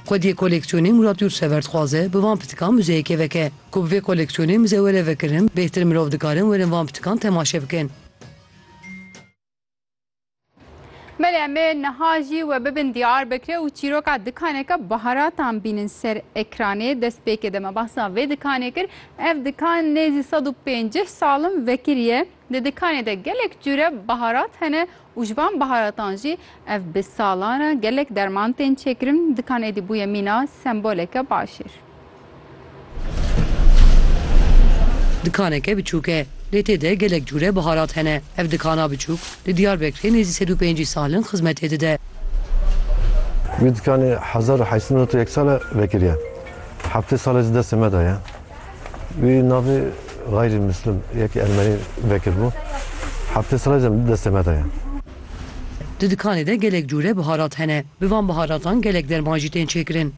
Xwediyê koleksiyonê Murat Yurtsever dixwaze bi van pitikan muzeyeke veke. Ku bi vê koleksiyonê muze were vekirin, bêhtir mirov dikarin werin van pitikan temaşe bikin. Belê em ê niha jî we bibin Diyarbekirê û çîroka dikaneke baharatan bînin ser ekranê. Destpêkê de me behsa vê dikanê kir. Ev dikan nêzî sed û pêncîh sal in vekirî ye. Di dikanê de gelek cure baharat hene û ji van baharatan jî ev bi salan re gelek derman tên çêkirin. Dikan êdî bûye mîna semboleke başêr. Dikaneke biçûk e lê tê de gelek cure baharat hene. Ev dikana biçûk li Diyarbekirê nêzî sed û pêncî sal in xizmetê dide. Vî dikanê hezar û heşt sed û newt û yek sal e vekirî ye. Heftê sal e ji destê me de ye. Wî navê Xayrî Muslim yekî ermenî vekiribû. Heftê sala jî em destê me de ye. Di dikanê de gelek cûre biharat hene. Bi van biharatan gelek derman jî tên çêkirin.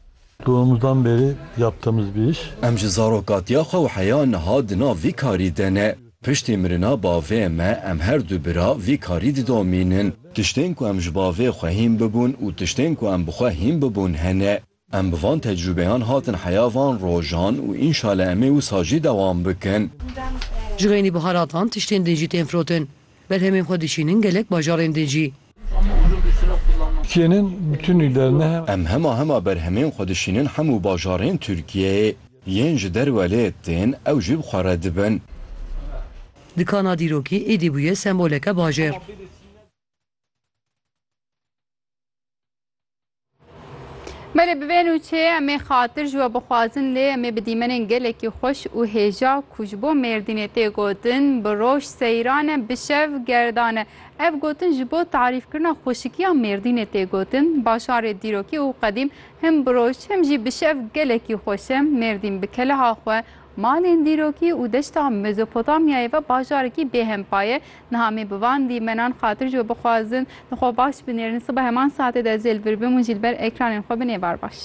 Doğumuzdan beri yaptığımız bir iş. Em ji zarokatiya xwe û heya niha di nav vî karî de ne. Piştî mirina bavê me em her du bira vî karî didomînin. Tiştên ku em ji bavê xwe hîn bibûn û tiştên ku em bi xwe hîn bibûn hene. Em bi van tecrûbeyan hatin heya van rojan û înşale em ê wisa jî dewam bikin. Ji xênî biharatan tiştên din jî tên firotin. Berhemên xwe dişînin gelek bajarên din jî. Em hema hema berhemên xwe dişînin hemû bajarên Tirkiyeyê. Yên ji derwe lê tên ew jî bi xwe re dibin. Dikana dîrokî êdî bûye semboleke bajêr. Belê bi vê nûçê em ê xatir ji we bixwazin lê em ê bi dîmenên gelekî xweş û hêja ku ji bo Mêrdînê tê gotin bi roj seyran e bi şev gerdan e. Ev gotin ji bo tarîfkirina xweşikiya Mêrdînê tê gotin. Bajarê dîrokî û qedîm him bi roj him jî bi şev gelekî xweş e. Mêrdîn bi keleha xwe Malên dîrokî û deşta Mezopotamyayê ve bajarekî bêhempa ye. Niha me bi van dîmenan xatir ji we bixwazin, li xwe baş binêrin, sibe heman saetê de zêl vir bim û jî li ber ekranên xwe bin êvar baş.